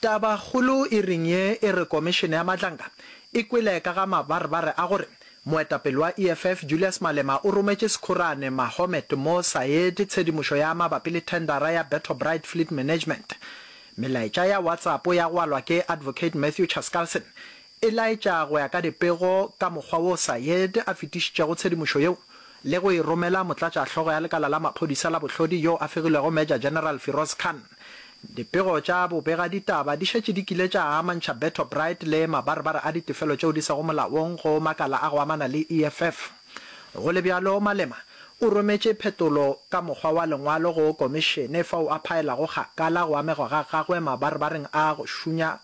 Tabakgolo e reng ye e re Komišene ya Mahlanka e kwele ka ga mabarebare a gore moetapele wa EFF Julius Malema o rometše Sekhorane Mahomet Mo Sayed tshedimošo ya mabapi le thendara ya Betho Bride Fleet Management. Melaetša ya WhatsApp ya gwalwa ke Advocate Matthew Chaskalson e laetša go ya ka dipego ka mokgwa wo Sayed a fetišitšego tshedimošo yeo le go e romela motlatšahlogo ya lekala la maphodisa la bohlodi yo a fegilwego Major General Firoz Khan. Dipego tša bobegaditaba di šetše di kile tša amantšha Berto Bright le mabarebare a ditefelo tšeo di sego molaong go makala a go amana le EFF. Go le bjalo, Malema o rometše phetolo ka mokgwa wa lengwalo go Komišene fao a phaelago kgakala go amegwa ga gagwe mabarebareng a go šunya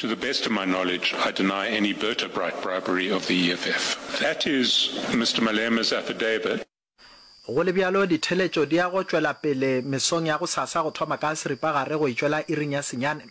To the best of my knowledge, I deny any vertebrate bribery of the EFF. That is Mister Malema's affidavit. Go le bjalo, ditheeletšo di ya go tšwela pele mesong ya gosasa go thoma ka seripagare go e tšwela iring ya senyane.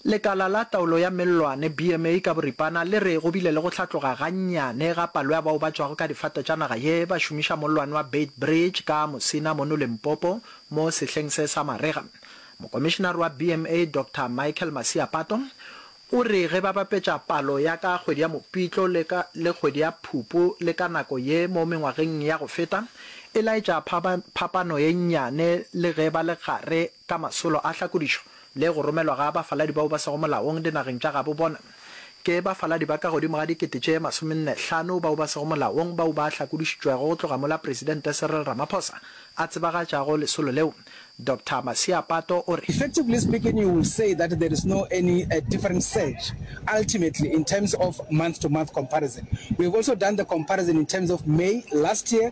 Lekala la Taolo ya Mellwane, BMA, ka boripana le re go bile le go hlatloga gannyane ga palo ya bao ba tšwago ka difate tša naga ye ba šomiša mollwane wa Beitbridge ka Musina mono Limpopo mo sehleng se sa marega. Mokomišenare wa BMA Doctor Michael Masiapato o re ge ba bapetša palo ya ka kgwedi ya Mopitlo le ka le kgwedi ya Phupu le ka nako ye mo mengwageng ya go feta e laetša phapano ye nnyane le ge ba le gare ka masolo a tlhakodišo le go romelwa ga bafaladi bao ba sego molaong dinageng tša gabo bona. Ke bafaladi ba ka godimo ga dikete tše masomenne hlano bao ba sego molaong bao ba hlakodišitšwego go tloga mola Presidente Cyril Ramaphosa a tsebagatšago lesolo leo. Doctor Masiapato o re. Effectively speaking you will say that there is no any different surge ultimately in terms of month to month comparison. We have also done the comparison in terms of May last year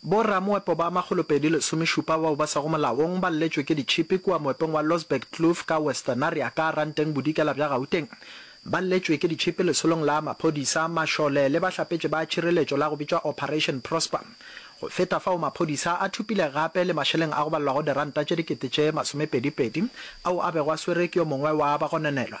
Bo-ramoepo ba makgolopedi lesomešupa bao ba sego molaong ba lletšwe ke ditšhipi kua moepong wa Losberg Kloof ka Westernaria ka Ranteng Bodikela bja Gauteng. Ba lletšwe ke ditšhipi lesolong la maphodisa, mašole le bahlapetši ba tšhireletšo la go bitšwa Operation Prosper. Go feta fao maphodisa a thopile gape le mašeleng a go balelwago diranta tše dikete tše masomepedipedi ao a bego a swerwe ke yo mongwe wa bagononelwa,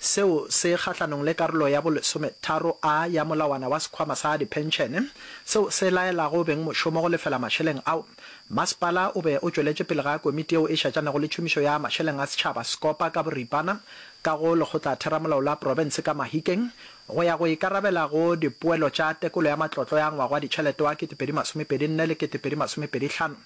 Seo se kgahlanong le karolo ya bolesometharo a ya molawana wa sekhwama sa diphenšene, seo se laelago beng mošomo go lefela mašeleng ao. Masepala o be o tšweletše pele ga komiti yeo e šetšanago le tšhomišo ya mašeleng a setšhaba Sekopa ka boripana ka go Lekgotlatheramolao la Profense ka Mahikeng go ya go ikarabela go dipoelo tša tekolo ya matlotlo ya ngwaga wa ditšhelete wa 2024 le 2025.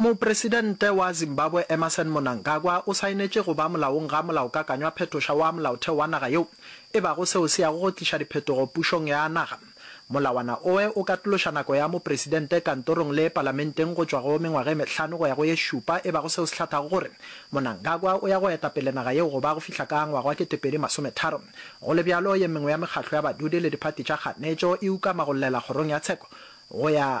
Mopresidente wa Zimbabwe Emmerson Monangagwa o saenetše go ba molaong ga molaokakanywa phetoša wa molaotheo wa naga yeo e bago seo se yago go tliša diphetogo pušong ya naga. Molawana oe o katološa nako ya mopresidente kantorong le palamenteng go tšwa go mengwaga e mehlano go ya go ye šupa e bago seo se hlathago gore Monangagwa o ya go eta pele naga yeo go ba go fihla ka ngwaga wa ketepedi masome tharo. Go le bjalo ye mengwe ya mekgahlo ya badudi le diphati tša kganetšo e ukama go llela kgorong ya tsheko go ya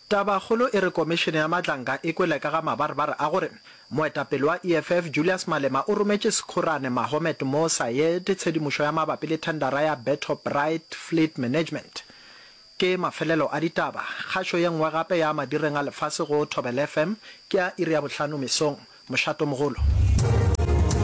Tabakgolo e re Komišene ya Matlanka e kwele ka ga mabarebare a gore moetapele wa EFF Julius Malema o rometše Sekgorane Mahomet Mo Sayed tshedimošo ya mabapi le thendara ya Beto Bright Fleet Management. Ke mafelelo a ditaba. Kgašo ye nngwe gape ya madireng a lefase go Thobela FM ke ya iri ya bohlano mesong. Mošato mogolo.